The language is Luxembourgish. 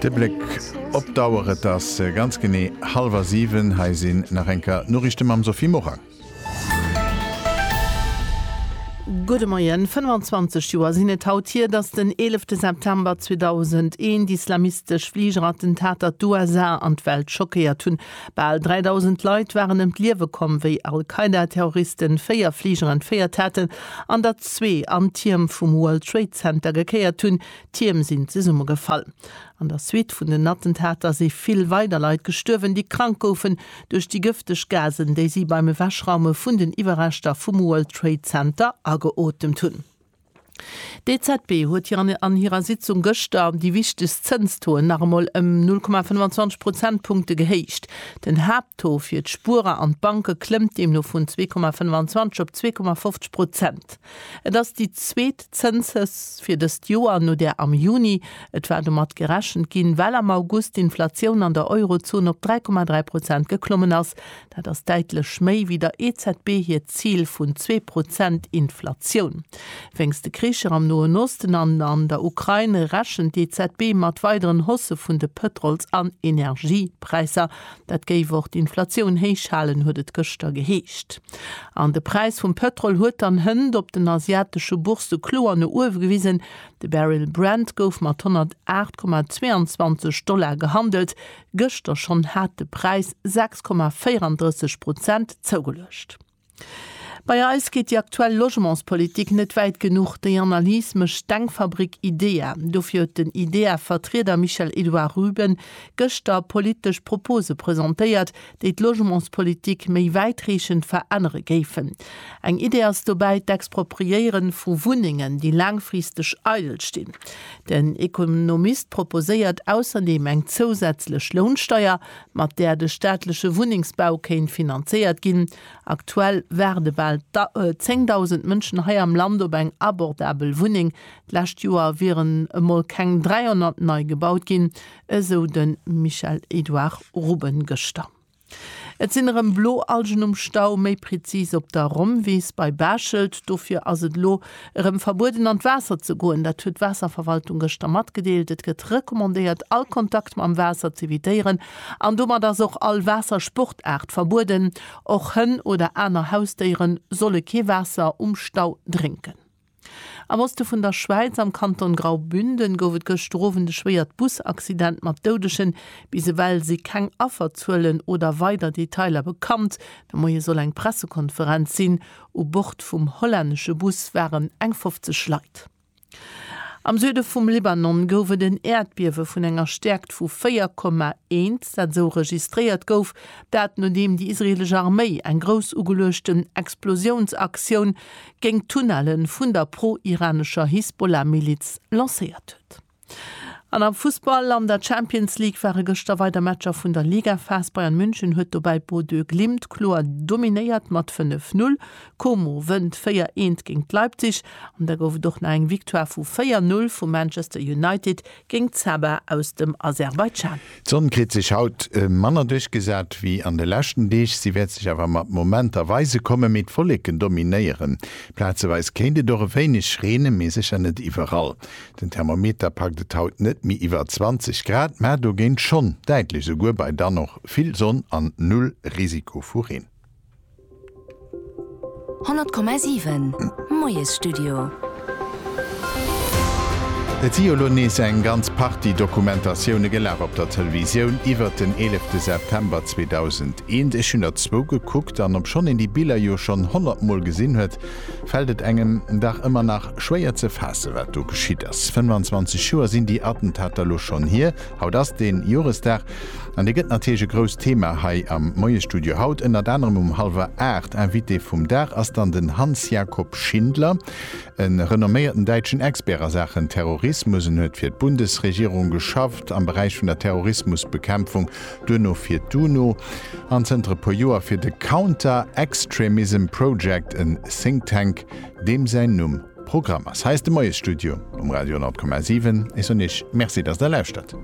De Bléck op d'Auer, et ass ganz genee hallwer siwen. Hei sinn nach eng Kéier d'Noriichte mam Sophie Morang. Gudde Moien. 25 Joer sinn et haut hier, datt den 11 September 2001 d'islamistesch Fligerattentat, der d'USA an d'Welt schockéiert hunn. Bal 3.000 Leit waren ëm d'Liewe komm, wéi Al-Qaida-Terroriste véier Fliger entféiert haten an der zwee an d'Tierm vum World Trade Center gekéiert hunn. D'Tierm sinn zesummegefall. An der Suite vun den Attentater si vill weider Leit gestuerwen, déi krank goufen duerch déi gëfteg Gasen, déi si beim Ewechraume vun den Iwwerreschter vum World Trade Center ageotemt hunn. D'EZB huet hir an hirer Sitzung gëschter déi wichtegst Zënstoen nach emol ëm 0,25 Prozentpunkte gehéicht. Den Haapttaux fir d'Spuerer an d'Banke klëmmt deemno vun 2,25 op 2,50 Prozent. Et ass déi zweet Zënshausse fir dëst Joer no där am Juni. Et war domat gerechent ginn, well am August d'Inflatioun an der Eurozon op 3,3 Prozent geklommen ass. Dat ass däitlech méi wéi der EZB hiert Zil vun zwee Prozent Inflatioun. Wéinst de Kricher am Noen Osten an an der Ukrain rechent d'EZB mat weideren Haussë vun de Pëtrols an Energiepräisser. Dat géif och d'Inflatioun héich halen, huet et gëschter geheescht. An de Präis vum Pëtrol huet dann hënt op den asiatesche Boursë kloer no uewe gewisen. De Barrel Brent gouf mat 108,22 Dollar gehandelt, Gëschter schonn hat de Präis 6,34 Prozent zougeluecht. Bei eis geet déi aktuell Logementspolitik net wäit genuch. Déi Analys mécht d'Denkfabrik IDEA. Dofir huet den IDEA-Vertrieder Michel-Edouard Ruben gëschter politesch Propose presentéiert, déi d'Logementspolitik méi wäitreechend verännere géifen. Eng Idee ass dobäi d'Expropriéiere vu Wunnengen, déi laangfristeg eidel stinn. Den Ekonomist proposéiert ausserdeem eng zousätzlech Lounsteier, mat där de staatleche Wunnengsbau kéint finanzéiert ginn. Aktuell waarde bal 10.000 Mënschen hei am Land op eng abordabel Wunneng. D'lescht Joer wieren emol keng 300 nei gebaut ginn, esou de Michel-Edouard Ruben gëschter. Et sinn erëm blo Algen um Stau, méi prezis op der Rommwiss bei Bechelt. Dofir ass et elo erëm verbueden an d'Waasser ze goen. Dat huet d'Waasserverwaltung gëschter matgedeelt. Et gëtt recommandéiert all Kontakt mam Waasser z'evitéieren an domat ass och all Waassersportaart verbueden. Och Hënn oder aner Hausdéiere solle kee Waasser um Stau drénken. Am Oste vun der Schwäiz, am Kanton Graubünden, gouf et gëschter Owend e schwéiert Busaccident mat Doudegen. Bis ewell si keng Afferzuelen oder weider Detailer bekannt. De Moie soll eng Pressekonferenz sinn. U Bord vum hollännesche Bus waren eng 50 Leit. Am Süde vum Libanon gouf et en Äerdbiewe vun enger Stäerkt vu 4,1, dat esou registréiert gouf. Dat nodeem déi israeelesch Arméi eng grouss ugeluechten Explosiounsaktioun géint d'Tunnelle vun der pro-iranescher Hisbollah-Miliz lancéiert huet. An am Fussball, An der Champions League ware gëschter weider Matcher vun der Ligaphas. Bayern München huet dobäi Bodø Glimt kloer dominéiert mat 5, 0. Como wënnt 4, 1 géint Leipzig an da gouf et och nach eng Victoire vu 4, 0 vu Manchester United géint Zaba aus dem Aserbaidschan. D'Sonn kritt sech haut manner duerchgesat ewéi an de leschten Deeg. Si wäert sech awer mat Momenter weise kommen, mee d'Wolleken dominéieren. Plazeweis kéint et och e wéineg reenen, mee sécher net iwwerall. Den Thermometer packt et haut net méi iwwer 20 Grad, mä dogéint schonn däitlech esouguer bei dann och vill Sonn an null Risiko vu Reen. 100,7 Moiesstudio. Et si jo lo nees eng ganz Partie Dokumentatioune gelaf op der Televisioun iwwert den eelefte September 2001. Ech hunn der zwou gekuckt, an obschonn een déi Biller jo schonn honnert Mol gesinn huet, fält et engem dach ëmmer nach schwéier ze faassen, wat do geschitt ass. 25 Joer sinn déi Attentater lo schonn hier. Haut ass den Joresdag an dee gëtt natierlech e grousst Thema hei am Moiesstudio. Haut ënnert anerem um hallwer 8. Invité vum Dag ass dann den Hans-Jakob Schindler, e renomméierten däitschen Expert a Saachen Terrorismus. En huet fir d'Bundesregierung geschafft am Beräich vun der Terrorismusbekämpfung, duerno fir d'UNO an zënter e puer Joer fir de Counter Extremism Project, en Think Tank deem säin Numm Programm ass hei de Moiesstudio um Radio 10,7. Ech soen Iech Merci, dass Der lauschtert.